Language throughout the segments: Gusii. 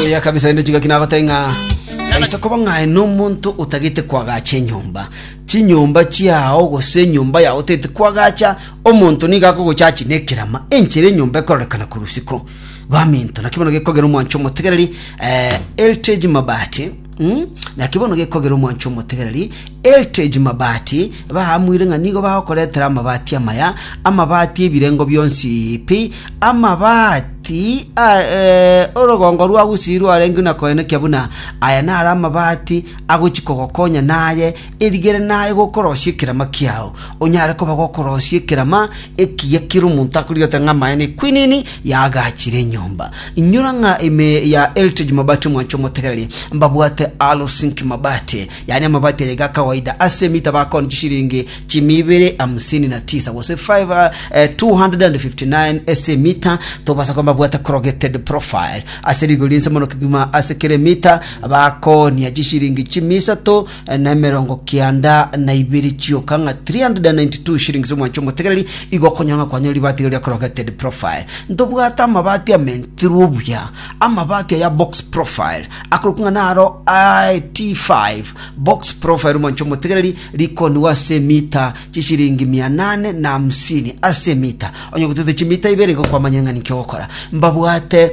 oya kabisa ende chigaki nagotee ng'a aise koba ng'ae nomonto otagete kwagacha enyomba chinyomba chiao gose enyomba yao otete kwagacha omonto niga akogochachi na ekerama enchera enyomba ekororekana korusiko baminto naki bono gekogera omwancho omotegereri eh, eltage mabati Naki bono gekogera omwancho omotegereri, Heritage Mabati, baamwire ng'a nigo bagokoretera amabati amaya, amabati ebirengo bionsi pi, amabati a eh, orogongo rwa Gusii rwarenge na koenekia buna aya naro amabati agochi kogokonya naye Erigere naye gokorosia ekerama kiao, onyare koba gokorosia ekerama ekiya kere omonto akorigia goteeba ng'a amaene equinini yaagachire enyomba. Inyora ng'a ime ya Heritage Mabati omwancha omotegereri mbabwate Alo Sink Mabati, yaani amabati aya iga akawaida ase emetaba akoni chishilingi chimia ibere hamsini na tisa gose 5 eh, 259 ase emita tobasa koba mbabwate corrugated profile ase rigori ense mono kegima ase kere emita bakonia chishilingi chimia isato nemerongo kianda na ibere chioka ng'a 392 shillings omwancho omotegereri igo okonyora ng'a kwanyora ribaati riria corrugated profile ntobwate amabaati amentirwe obuya amabaati aya box profile akorokwa ng'a naro ah, t5 box profile omwancho omotegereri rikonigwa ase emita chishiringi mia nane na hamsini ase emita onye gotete chimita ibere igo kwamanyire ng'a niki ogokora mbabwate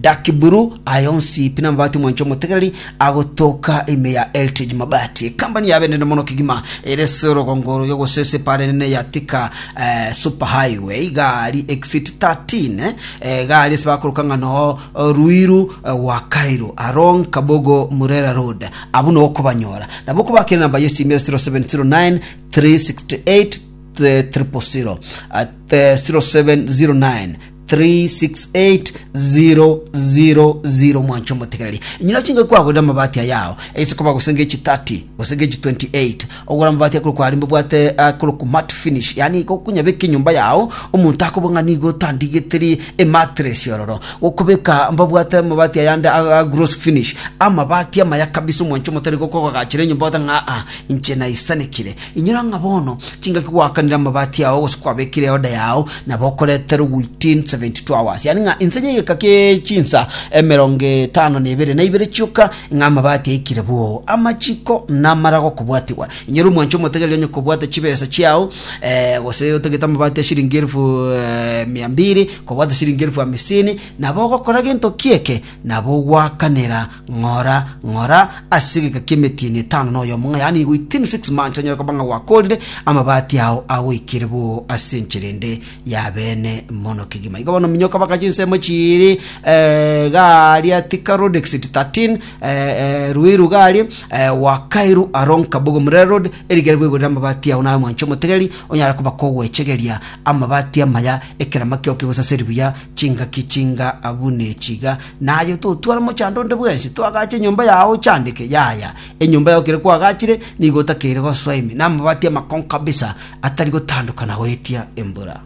Daki buru aya onsi pi namabati omwancha omotegereri agotoka ime ya Eltej Mabati, ekambani yabe nene mono kegima ere ase orogongo oroiyo gose ase epaara enene ya Thika eh, Super Highway, igari exit 13 eh, egari ase bakoroka ng'a no eh, Ruiru eh, wa Cairo along Kabogo Murera Road, abwo no okobanyora nabo okobakera namba yesimi ase 0709 368 000 at eh, 0709 368000 mwanche omotegereri nyina chinga kwagorire amabati ayao ase koba gose ngechi 30 gose ngechi 28 ogora amabati akorokwa aria mbabwate akorokwa mat finish yani igo okonyabeka enyomba yao omonto akoba ng'a nigo otandigeteri ematress ororo gokobeka mbabwate amabati ayande a- a gross finish amabati amaya kabisa omwancho omotere gokogagachera enyomba ogote ng'a aa inche naisanekire Inyora ng'a bono tingaki gwakanire amabati ao gose kwabekire eoda yao, na bokoreterwe within 72 hours, yaani ng'a inse y'egeka kie chinsa emerongo etano na ebere na ibere chioka, ng'a amabati aikire bwoo, amachiko na amarago kobwatigwa. Inyora omwanche omotegereri onye kobwata chibesa chiao, eh, gose otagete amabati a siringi elfu, eh, mia mbiri, kobwata siringi elfu amisini, nabo ogokora gento ki'eke, nabo ogwakanera Ng'ora, ng'ora ase egeka ki'emetieni etano na oyomo, ng'a yaani within six months onyare koba ng'a gwakorire amabati ao agoikire bo ase enchera ende ya bene mono kegima. Igo bono minyoka baka chinsemo chiiri eh, garia tika road exit 13 eh, eh, ruiru garia eh, wakairu along kabogo murere road erigere gwegorera amabati ao naye mwancho omotegeri onyare koba kogwechegeria amabati amaya ekerama kiao kegosaseri buya chingaki chinga abune chiga Naye totware mochando onde bwensi toagache enyomba yao ochandeke. Yaya, enyomba yao kere kwagachire nigo otakeire gosoa ime, na amabati amakongo kabisa atari gotandokana goetia embura.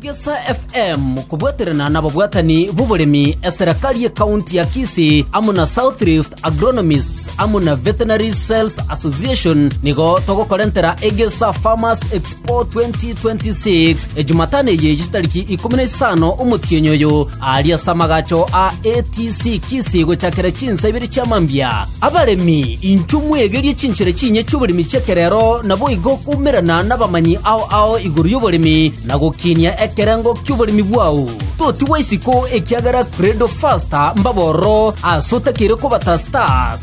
Egesa FM kobwaterana nababwatani b'oboremi eserekari ye county ya Kisii amo na South Rift Agronomists amo na Veterinary Sales Association nigo togokorentera Egesa Farmers Expo o 2026 ejumatano eye eye tariki ikomi na isano omotienyi oyo aria ase amagacho a atc kisi gochakera chinsa ibere chia mambia abaremi inchwe mwegerie chinchera chinye chioboremi chekerero naboigo koumerana nabamanyi ao ao igoro yoboremi na gokinia ekerengo kioboremi bwao totigwa isiko ekiagera credo faster mbabororo ase otakeire kobata stars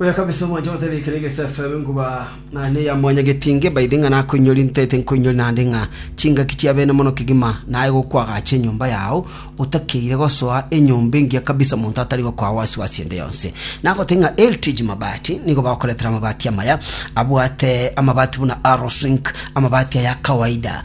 Oya kabisa omwancha obatebia ekero egesa efebe nkoba naye neya mwanyagetinge baite ng'a nakoinyori ntaete nkoinyori naende ng'a chingaki chia bene mono kegima naye gokwagacha enyomba yao otakeire gosoa enyomba engiya kabisa monto atari gokoa wasi wasi ende yonsi nagote ng'a LTG mabati nigo bagokoretera amabati amaya abwate amabati buna Arrowsink amabati aya kawaida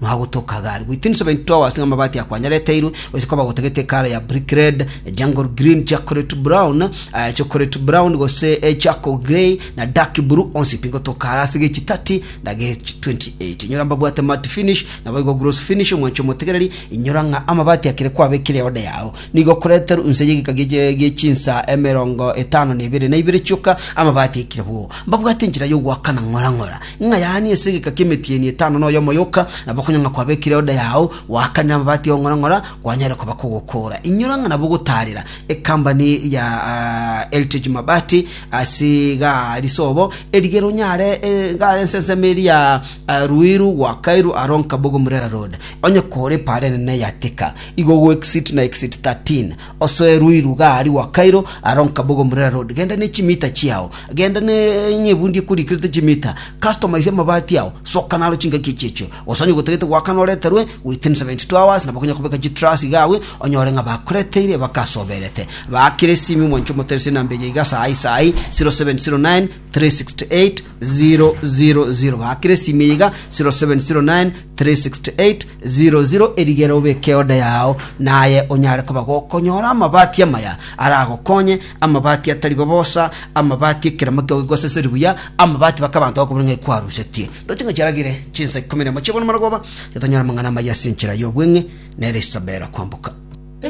Mwagotokaga are goita ensaba into ao ase amabati a Kwanyareteirwe, gochia koba gotagete ekara ya Brick Red, Jungle Green, Chocolate Brown, eh, Chocolate Brown gose eh, Charcoal Grey na Dark Blue, onsi pi ngotoka are ase gechi 30 na gechi 28. Inyora mbabwate matte finish, naboigo gloss finish, omwancho omotegereri, inyora ng'a amabati akire kwabekire eode yao. Nigo koreterwe inse y'egeka gie- gie chinsa emerongo etano na ibere na ibere chioka, amabati ekire boo. Mbabwate enchera y'ogoakana ng'ora ng'ora, Ng'a yaani ase egeka ki'emetieni etano na oyomo yoka, nabo konya ng'a kwabekire oda yao, goakanire amabati ong'ora-ng'ora, kwanyare koba kogokoora. Inyora ng'a nabo gotaarera ekambani ya Heritage Mabati ase igaa risobo, erigere onyare igaa ense ensemo eri ya Ruiru gwakairwe aro Nkabogo Murera Road. Onye koore epaara enene ya Thika, igo ogo exit na exit 13. Osoe ruiru gari gwa Kairo, aro nkaboga omurera road, genda ne chimita chiao, genda ne ng'a ebundi ekurikirete chimita, customer ise amabati ao, soka naro chingaki echio echio. Gose onye gotagete goakana oreterwe within 72 hours, nabo okonya kobeka chitruss iga agwo, onyore ng'a bakureteire bakasoberete. Baakire esimi omwancha omoterese enamba eye iga saa hii saa hii, 0709 368 000 bakire esimi iga 0709368000 erigere obeke oda yao naye onyare koba gokonyora amabati amaya aragokonye amabati atari gobosa amabati ekeramo kio gigoseseri buya amabati bakabanto bakobuna ng'a ekwarusetie ndoche ng'a chiaragire chinsa ikomi nemo chiabona maragoba totonyora amang'ana amaya ase enchera y'obweng'e nere esabera kwamboka